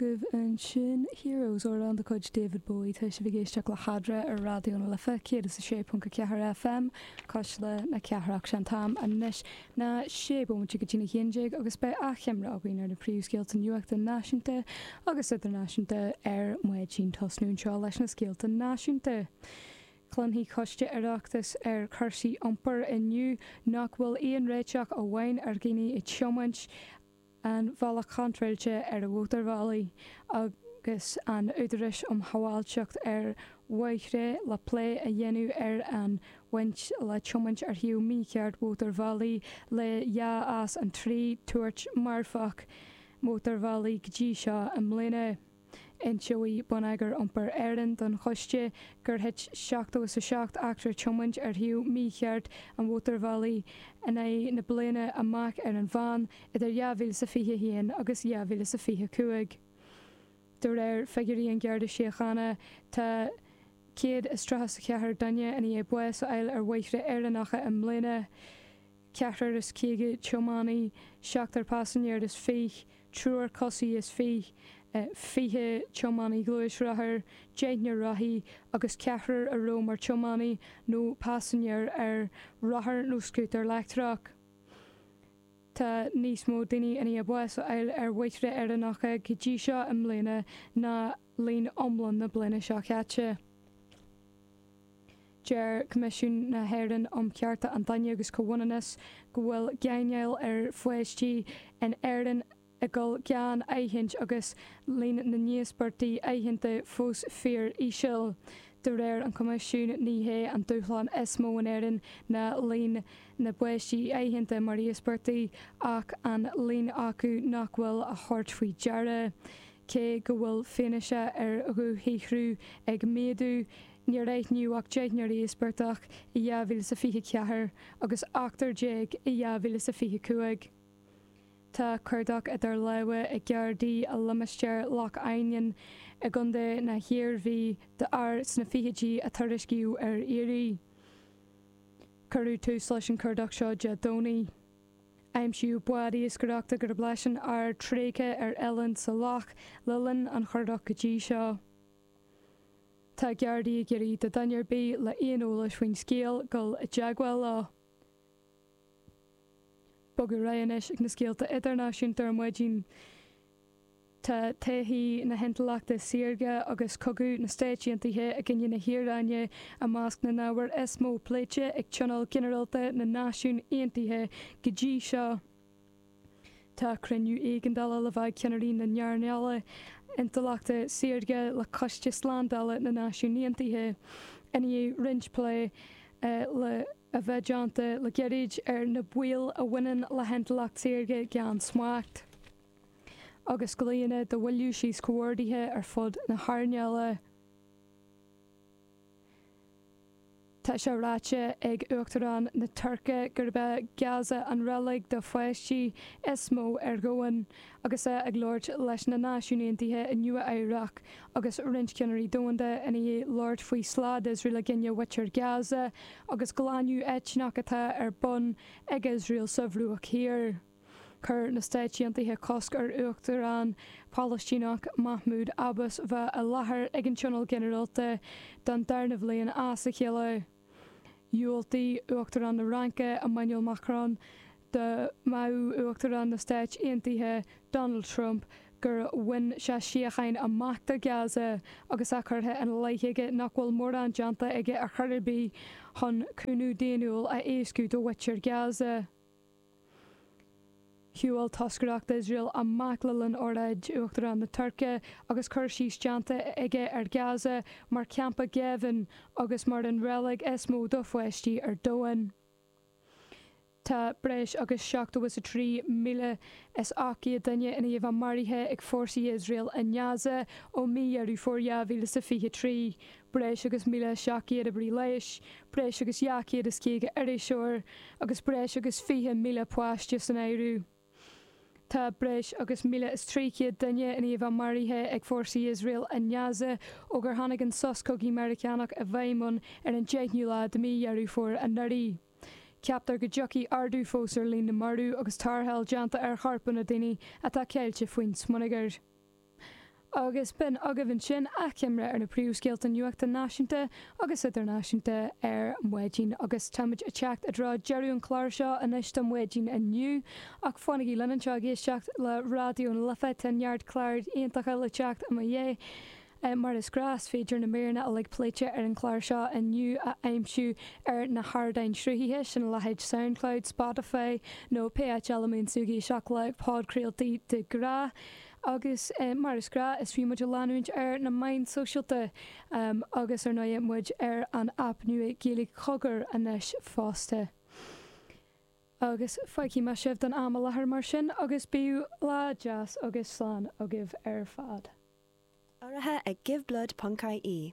Ba é sin Heroes, amhrán de chuid David Bowie, tá sibh ag éisteacht le hAdhmhaidin ar Raidió na Life 106.4 FM cuisle na cathrach. Is é an t-am anois ná sé bomaite go dtí a haon déag agus beidh achoimre againn ar na príomhscéalta nuachta náisiúnta agus idirnáisiúnta ar maidin. Tosóidh muid anseo leis na scéalta náisiúnta. Cluinfidh coiste Oireachtais ar cúrsaí iompair inniu nach bhfuil aon réiteach amháin ar dhaoine ag tiomáint. an bhealach contráilte ar mhótarbhealaí agus an Údarás um Shábháilteacht ar Bhóithre le plé a dhéanamh ar an bhaint atá le tiomáint ar thaobh mícheart mhótarbhealaí le dhá as an trí thuairt marfach mótarbhealaí go dtí seo i mbliana. Inseoidh Bonneagar Iompair Éireann don Choiste gur thit 77 eachtra tiomána ar thaobh mícheart an mhótarbhealaigh in aghaidh na bliana amach ar an mheán idir dhá mhíle is a fiche a haon agus dhá mhíle is a fiche a cúig. De réir figiúirí an Gharda Síochána, tá 134 duine ina dhiaidh báis a fháil ar bhóithre Éireannacha i mbliana. ceathrar is caoga tiománaí, seachtar paisinéir is fiche, triúr coisí is fiche, fiche tiománaí gluaisrothair, deichniúr rothaí, agus ceathrar a raibh mar tiománaí nó paisinéir ar rothar nó scútar leictreach. Tá níos mó daoine i ndiaidh bás a fháil ar bhóithre Éireannacha go dtí seo i mbliana ná líon iomlán na bliana seo caite. Deir Coimisiún na hÉireann um Chearta an Duine agus Comhionannas go bhfuil gáinneáil ar pháistí in Éirinn ag gabháil gan aithint agus líon na n-íospartach aitheanta fós fíor íseal. De réir an Choimisiúin ní hé an dúshlán is mó in Éirinn ná líon na bpáistí aitheanta mar íospartaigh ach an líon acu nach bhfuil á thabhairt faoi deara. Cé go bhfuil fianaise ar dhúshaothrú ag méadú, níor aithníodh ach deichniúr íospartach i 2024 agus ochtar déag i 2025. Tá cuardach idir lámha ag Gardaí i limistéar Loch Ainnín i gContae na hIarmhí d'fhear sna fichidí a tuairiscíodh ar iarraidh. Cuireadh tús leis an chuardach seo Dé Domhnaigh. Aimsíodh bád iascaireachta gurb leis an fhear tréigthe ar oileán sa loch le linn an chuardach go dtí seo. Tá Gardaí ag iarraidh do dhuine ar bith le aon eolas faoin scéal dul i dteagmháil leo. Bogadh ar aghaidh anois ag na scéalta idirnáisiúnta ar maidin. Tá todhchaí na hintleachta saorga agus cogadh na Stáit Aontaithe i gcoinne na hIaráine i measc na n-ábhar is mó pléite ag Tionól Ginearálta na Náisiún Aontaithe go dtí seo. Tá cruinniú éigeandála le bheith ag ceannairí na n-earnála intleachta saorga le Coiste Slándála na Náisiún Aontaithe i ndiaidh roinnt plé a bheith déanta le gairid ar na baoil a bhaineann le hintleacht saorga gan smacht. agus glaonna do mhoilliú síos comhordaithe ar fud na hearnála Tá sé ráite ag Uachtarán na Tuirce gurb é Gaza an reilig do pháistí is mó ar dhomhan agus é ag labhairt leis na Náisiúin Aontaithe i Nua-Eabhrac agus roinnt ceannairí domhanda i ndiaidh labhairt faoi slad Iosrael i gcoinne mhuintir Gaza agus glanadh eitneach atá ar bun ag Iosrael sa Bhruach Thiar. Chuir na Stáit Aontaithe cosc ar Uachtarán Palaistíneach Mahmoud Abbas bheith i láthair ag an Tionól Ginearálta don darna bhliain as a chéile. Dhiúltaigh Uachtarán na Fhraince, Emmanuel Macron, do mhaíomh Uachtarán na Stáit Aontaithe, Donald Trump, gur bhain sé síocháin amach do Gaza agus é curtha ina leith aige nach bhfuil mórán déanta aige ar chor ar bith chun cúnamh daonnúil a éascú do mhuintir Gaza. Shiúil toscaireacht Iosrael amach le linn óráid Uachtarán na Tuirce agus cur síos déanta aige ar Gaza mar champa géibhinn agus mar an reilig is mó do pháistí ar domhan. Tá breis agus seachtó is a trí míle is ocht gcéad duine i ndiaidh a bheith maraithe ag fórsaí Iosrael i nGaza ó mí Dheireadh Fómhair 2023. breis agus 1,700 oibrí leighis, breis agus 250 iriseoir agus breis agus 20,000 páiste san áireamh. Tá breis agus 1,300 duine i ndiaidh a bheith maraithe ag fórsaí Iosrael i nGaza ó gur tháinig an sos cogaidh Meiriceánach i bhfeidhm ann ar an deichniú lá de mhí Dheireadh Fómhair anuraidh. Ceaptar go dtiocfaidh ardú fós ar líon na marbh agus tarrtháil déanta ar chorpanna daoine atá caillte faoin smionagar. agus b'in agaibh ansin achoimre ar na príomhscéalta nuachta náisiúnta agus idirnáisiúnta ar maidin agus táimid ag teacht i dtreo deireadh an chláir seo anois don mhaidin inniu ach fanaigí linn anseo ag éisteacht le Raidió na Life, tá neart cláir iontacha le teacht i mo dhiaidh mar is gnáth is féidir na míreanna uilig pléite ar an gclár seo inniu a aimsiú ar na hardáin sruthaithe sin a leithéid Soundcloud, Spotify nó pé áit eile a mbíonn tú ag éisteacht le podchraoltaí de ghnáth. Agus mar is gnáth, is fiú muid a leanúint ar na meáin sóisialta agus ar ndóigh muid ar an aip nua Gaeilge Cogair anois fosta. Agus fágfaidh mé sibh don am i láthair mar sin agus bíodh lá deas agus slán agaibh ar fad. Urraithe ag Give Blood ponc I E.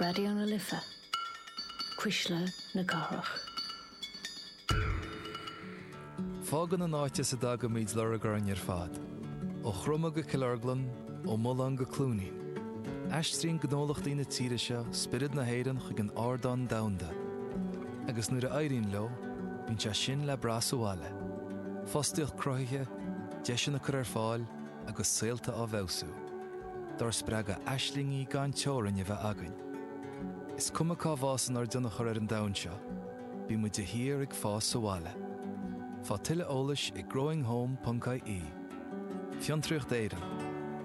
Raidió na Life, Cuisle na Cathrach. Fágann an áit as a dtagaimid lorg orainn ar fad. Ó Chromadh go Cill Orglan, ó Mulán go Cluainín. Aistríonn gnólachtaí na tíre seo spiorad na hÉireann chuig an ardán domhanda. Agus nuair a éiríonn leo, bíonn sé sin le brath sa bhaile. Fostaíocht cruthaithe, deiseanna á gcur ar fáil, agus saolta á bhfeabhsú, dár spreagadh aislingí gan teorainn a bheith againn. Is cuma cá bhfásann ár dtionchar ar an domhan seo, bíonn muid de shíor ag fás sa bhaile. Faigh tuilleadh eolais ag growinghome.ie Fiontraíocht Éireann,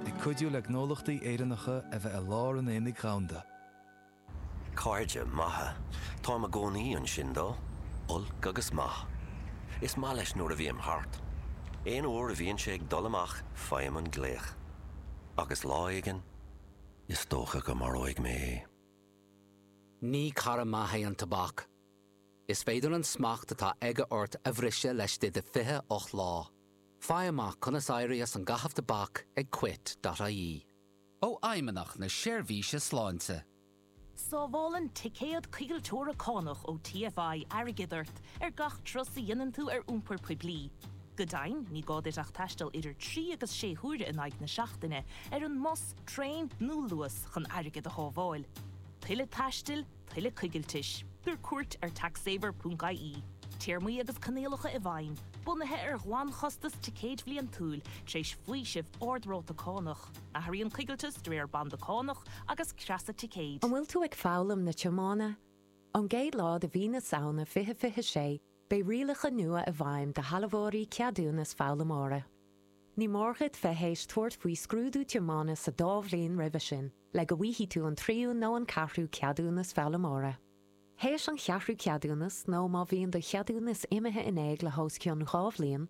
ag cuidiú le gnólachtaí Éireannacha a bheith i lár an aonaigh dhomhanda. Cairde maithe. Táim i gcónaí ansin dó, olc agus maith. Is maith leis nuair a bhím thart. Aon uair a bhíonn sé ag dul amach faighim an glaoch. Agus lá éigin, is dócha go maróidh mé é. Ní cara maith é an tobac. Is féidir an smacht atá aige ort a bhriseadh laistigh de 28 lá. Faigh amach conas éirí as an gcaitheamh tobac ag quit.ie. ó Fheidhmeannacht na Seirbhíse Sláinte. Sábhálann ticéad coigilteora cánach ó TFI airgead ort ar gach turas a dhéanann tú ar iompar poiblí. Go deimhin, ní gá duit ach taisteal idir trí agus sé huaire in aghaidh na seachtaine ar an mbus, traein nó Luas chun airgead a shábháil. Tuilleadh taistil, tuilleadh coigiltis. Tabhair cuairt ar TaxSaver.ie. Téarmaí agus coinníollacha i bhfeidhm, bunaithe ar ghlanchostas ticéid bhliantúil, tar éis faoiseamh ard-ráta cánach. Athraíonn coigilteas de réir banda cánach agus creasa ticéid. An bhfuil tú ag foghlaim na tiomána? Ón gcéad lá de mhí na Samhna 2026, beidh rialacha nua i bhfeidhm do shealbhóirí ceadúnas foghlaimeora. Ní mór dhuit bheith théis tabhairt faoi scrúdú tiomána sa dá bhliain roimhe sin le go bhfaighidh tú an tríú nó an ceathrú ceadúnas foghlaimeora. Théis an cheathrú ceadúnas nó má bhíonn do cheadúnas imithe in éag le hos cionn dhá bhliain,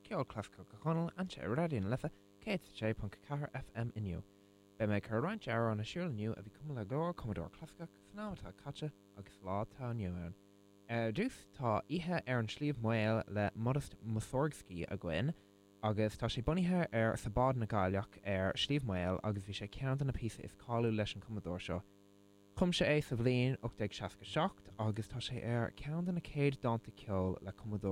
Ceol Clasaiceach Chonaill anseo ar Raidió na Life 106.4 FM inniu. Beidh mé ag cur roinnt amhrán ar siúl inniu a bhí cumtha le go leor cumadóir clasaiceach san am atá caite agus lá atá inniu ann. Ar dtús tá Oíche ar an Sliabh Maol le Modest Mussorgsky againn agus tá sé bunaithe ar Sabóid na gCailleach ar Sliabh Maol agus bhí sé ceann de na píosa is cáiliúil leis an cumadóir seo. Chum sé é sa bhliain 1867 agus tá sé ar ceann de na céad dánta ceoil le cumadóir.